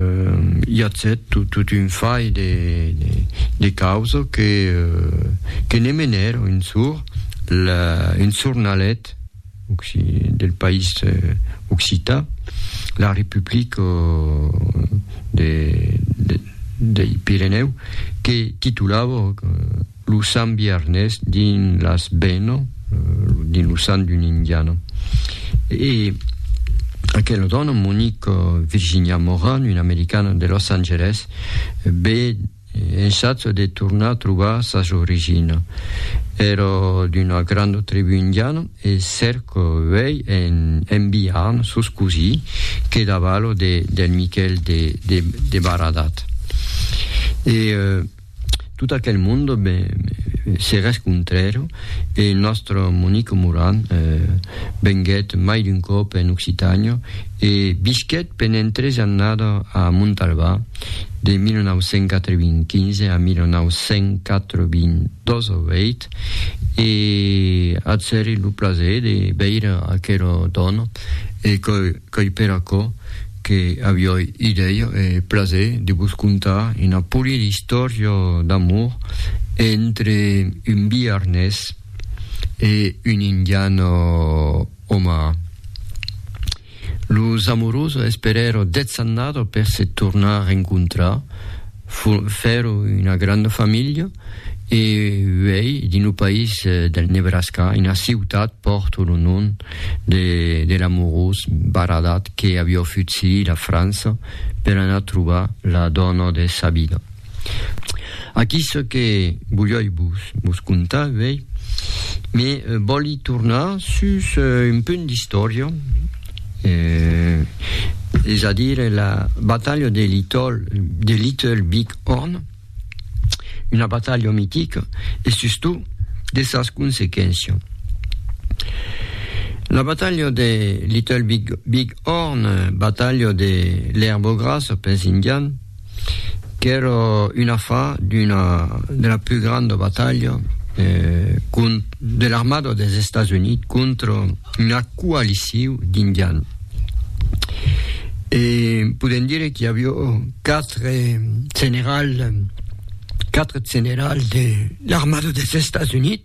I a cet tot un fai de causa que ne menèr un sor, un sornalet del país occità, La Republica dei Pirenèu, que titulava, Lo sant Vièrnes dins las Beno, dins lo sant d'un indiana. E aquela dòna, Monique Virginia Moran, una americana de Los Angeles, be ensatja de tornar trobar sas origina. Èra d'una granda tribú indiana e cerca uèi en, en Biarn, sos cosí que davalo de, del Miquel de, de, de Baradat. E, Tot aquel monde me serrés contrèro e nòstre Monique Moran venguèt mai d'un còp en Occitània e visquèt pendent tres annada a Montalbà de 1995 a 1998 e atzèri lo plaser de veire aquera dòna e que Qu'ei per aquò que avioi idèia e plaser de vos contar una polida istòria d'amor entre un biarnés e un indian omaha. Los amorosos esperèron dètz annadas per se tornar rencontrar. Fèron una granda familha e uèi dins lo país del Nebraska, una ciutat pòrt lo nom de l'amorós Baradat que aviá futzilh la França per anar trobar la dòna de sa vida. Aquí çò que volíoi vos contar uèi, me vòli tornar sus un punt d'istòria, eh, es a dire la batalha de Little, de Little Big Horn, una batalha mitica e sustot de sas consequéncias. La batalha de Little Big, Big Horn, batalha de l'erba grassa pels indians, qu'èra un afar d'una de la plus grande batalha eh, de l'armada des Estats Units contra una coalició d'indians. E podem dire que avió quatre generals, quatre generals de l'armada des Estats Units.